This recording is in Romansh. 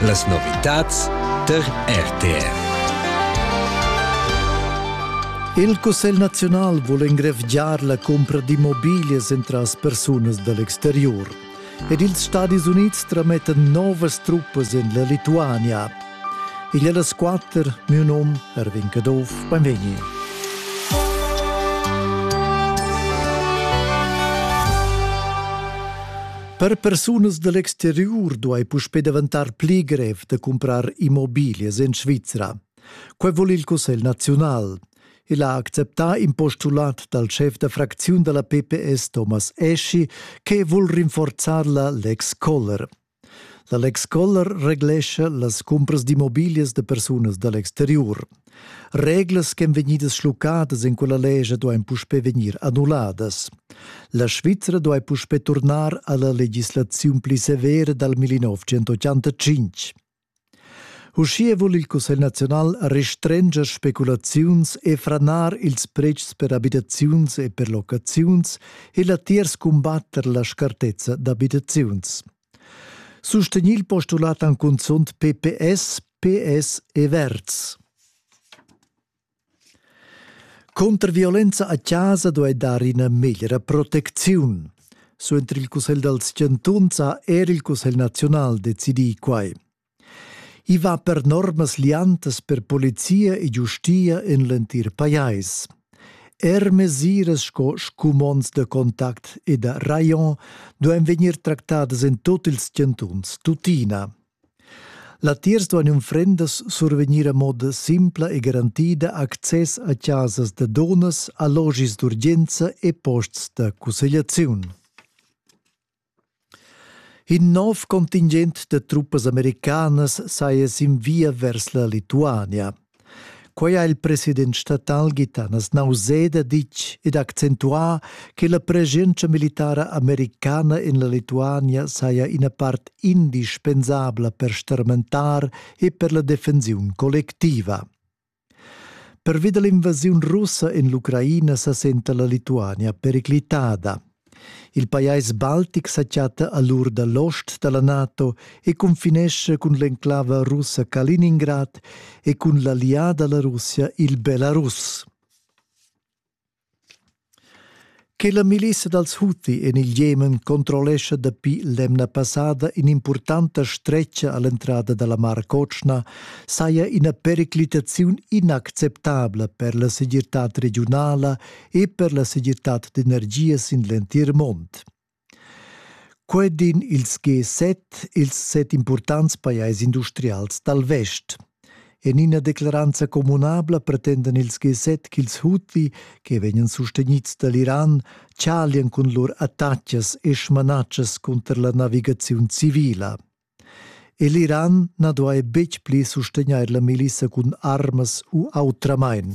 Las novitads tar RTR. Il Cussegl naziunal vul engrevgiar la cumpra d'immobiglias entras persunas da l'exterior. Ed ils Stadis Unids tramettan novas truppas en la Lituania. Igl è las quatter, mio num Erwin Caduff, benvegni. Per persunas da l'exteriur duai puspè daventar pli grev da cumprar immobiglias en Svizra. Quai vul il Cussegl naziunal. Il ha acceptà in postulat dal schef da fracziun da la PPS Thomas Eschi che vul rinforzar la Lex Koller. La Lex Koller reglescha las cumpras d'immobiglias da persunas da l'exteriur. Reglas ch'en vegnidas schluccadas en quella lescha duain puspè vegnir annulladas. La Svizra duai puspè turnar a la legislaziun pli severa dal 1985. Uschia vul il Cussegl naziunal restrenger speculaziuns e franar ils pretschs per abitaziuns e per locaziuns e latiers cumbatter la scartezza d'abitaziuns. Sustegnì il postulat han cunzunt PPS, PS e Verds. Cunter violenza a chasa duai dar ina meglra protecziun. Suenter il Cussegl dals chantuns ha er il Cussegl naziunal decidì quai. I va per normas liantas per polizia e giustia in l'entir pajais. Er mesiras sco scumonds da contact e da rayon duain vegnir tractadas en tut ils chantuns, tuttina. Latiers duain unfrendas survegnir a moda simpla e garantida access a chasas da dunnas, allogis d'urgenza e posts da cussegliaziun. In nov contingent da truppas americanas saja sin via vers la Lituania. Quai ha il president statal Gitanas Nauseda ditg ed accentuà che la preschientscha militara americana en la Lituania saja ina part indispensabla per starmentar e per la defensiun collectiva. Pervi da l'invasiun russa en l'Ucraina sa senta la Lituania periclitada. Il pajais baltic sa chatta a l'ur da l'ost da la NATO e confinesce cun l'enclava russa Kaliningrad e cun l'allià da la Russia il Belarus. Che la milissa dals Huti en il Jemen controllescha dapi l'emna passada in'impurtanta stretga a l'entrada da la Mar Cotschna saja ina periclitaziun inacceptabla per la segirtad regiunala e per la segirtad d'energia sin l'entir mund. Quei din ils G7, ils set impurtants pajais industrials dal vest. En ina declaranza communabla pretendan ils G7 ch'ils Houthi, che vegnan sustenids dall'Iran, tschalian cun lur attacas e smanatschas cunter la navigaziun civila. E l'Iran na duai betg pli sustegnair la milissa cun armas u autramain.